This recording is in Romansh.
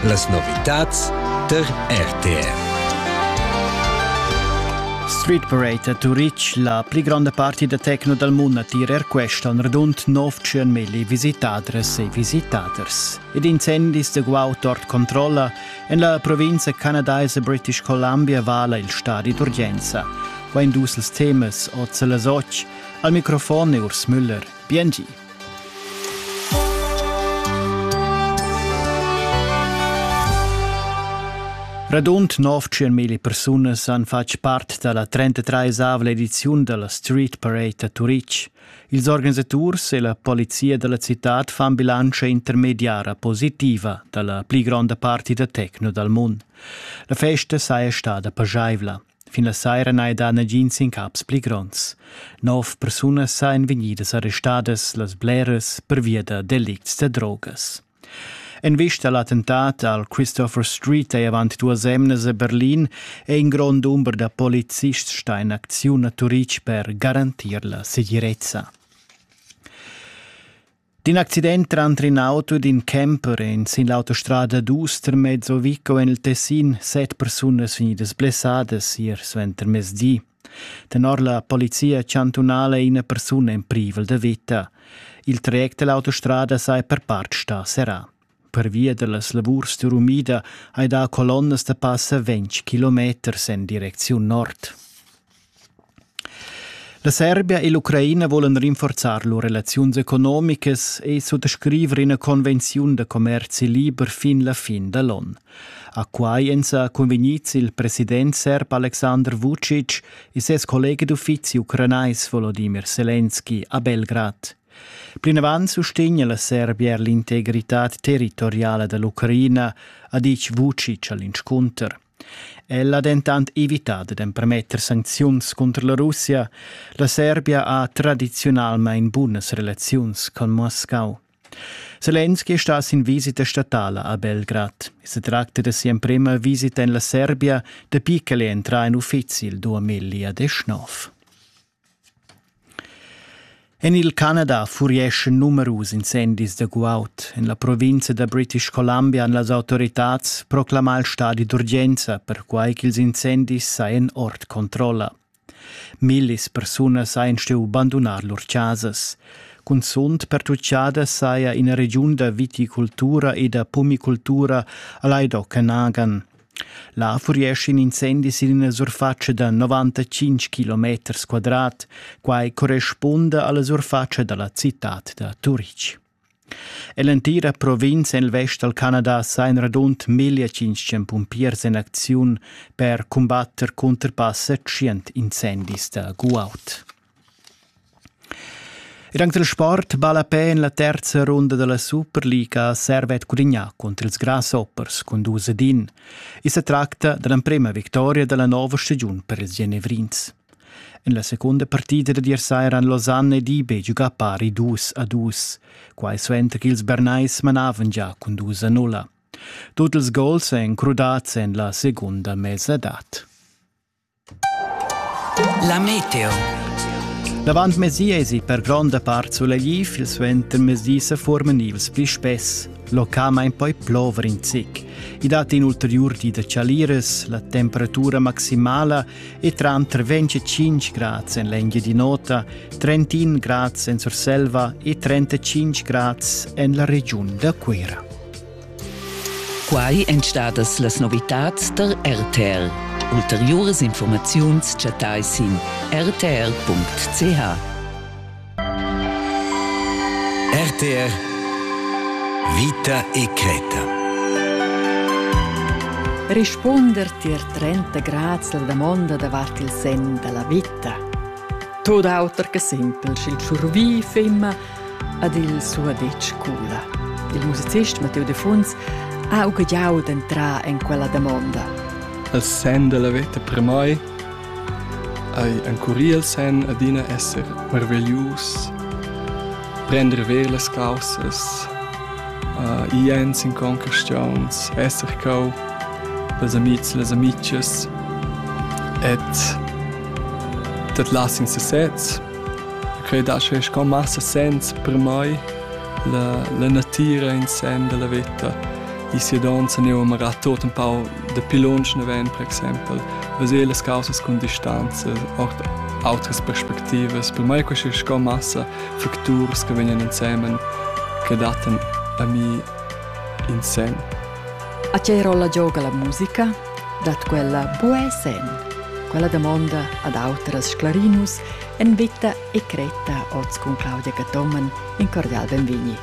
Las novitads tar RTR. Street Parade a Turitg, la pli gronda parti da tecno dal mund a tir er questa on radund 900 milli visitadres e visitaders. Ed incendis de guaud ord controlla, en la provincia canadaise British Columbia vala il stadi d'urgenza. Va in dus temas, oz las och. Al microfon è Urs Müller. Biengi. Radund 900 mila persunas han fatg part dalla 33esavla ediziun dalla Street Parade a Turitg. Ils organisaturs e la polizia dalla citad fan bilantscha intermediara positiva dalla pli gronda parti da tecno dal mund. La festa saja stada pageivla. Fin la saira n'hai dà nagins incaps pli gronds. Nov persunas sajan vegnidas arrestadas, las bleras pervia da delicts da drogas. En vista a l'attentat al Christopher Street è avant duas emnas a Berlin è in grond dumber da polizists stà in acziun a Turitg per garantir la segirezza. D'in accident tranter in auto ed in camper èn sin l'autostrada d'Uster mezzo Vico en il Tessin set persunas vegnidas blessadas ier suenter mezdi. Tenor la polizia chantunala è ina persuna en privel da vita. Il traject da l'autostrada saja per part stà serrà. Pervia dallas lavurs d'urumida hai dà colonnas da passa ventg kilometers en direcziun nord. La Serbia e l'Ucraina volan rinforzar lur relaziuns economicas e suttascriver ina convenziun da commerzi liber fin la fin da l'onn. A quai èn sa convegnids il president serb Aleksandr Vucic e ses collega d'uffizi ucranais Volodimir Selenski a Belgrad. Plinavant sustegna la Serbia er l'integritad territoriala da l'Ucraina, ha ditg Vucic a l'inscunter. Ella ha dentant evità dad empermetter sancziuns cunter la Russia. La Serbia ha tradiziunalmain bunas relaziuns con Moscau. Zelensky è stato in visita statala a Belgrad. Se tracta da sia emprima visita en la Serbia dapi ch'el è entrà en uffizi il 2019. En il Canada furieschan numerus incendis da guaud. En la provinza da British Columbia han las autoritads proclamà il stadi d'urgenza, perquai ch'ils incendis sajan ord controlla. Millis persunas hajan stuì bandunar lur chasas. Cunzunt pertutgada saja ina regiun da viticultura e da pumicultura a Laidoc en Agan. Là furiescha in incendi sin ina surfatscha da 95 kilometers quadrat, quai correspunda alla surfatscha dalla citad da Turitg. Ell'entira provinza en il vest dal Canada sa in radund 1500 pumpiers en acziun per cumbatter cunter passa 100 incendis da guaud. Ed anc dal sport balla pe en la terza runda da la Superliga Servet Cudigna cunter ils Grasshoppers cun dus ed in. I sa tracta da l'emprema victoria da la nova stagiun per ils Genevrins. En la seconda partida da ier saira han Lausanne ed IB giugà pari dus a dus, quai suenter ch'ils Bernais manavan già cun dus a nulla. Tut ils gols èn crudads en la segunda mesadad. La meteo. L'avantmezdi èsi per gronda part sulegliv, il suentermezdi sa forman ils pli spess. Localmain poi plover in zic. I dat in ulteriur di da chaliras, la temperatura maximala è tranter 25 grads en l'Engiadin'Ota, 31 grads en Surselva e 35 grads en la regiun da Cuira. Quai èn stadas las novitads da RTL. Ulteriuras informaziuns chattai sin rtr.ch. RTR Vita e cretta. Rispunder tier 30 grads la damonda davart il sen dalla vita. Tot auter che simpel, sch'il tschurvi femma Ad il suadetsch cula. Il musicist Matteo Defuns ha ugagliau d'entrar en quella damonda. Il sen della veta per mai ei encurir il sen adina esser marveglius, prender ver las causas, uh, i ens in conquestiuns, esser cau dels amics e les amices et dat las in sesez Quei dà sche sco massa sens per mei la, la natira in sen dalla veta. I sia donza ne amara tot un pau dapi lunsch naven, per exempel, veser las causas cun distanza, ord outras perspectivas. Per mei questa è sco massa facturs che vegnan insemen che dattan a mi in sen. A che rolla gioca la musica? dat quella buca senn. Quella damonda ad autras sclarinus en veta e cretta oz cun Claudia Cathomen in cordial benvegni.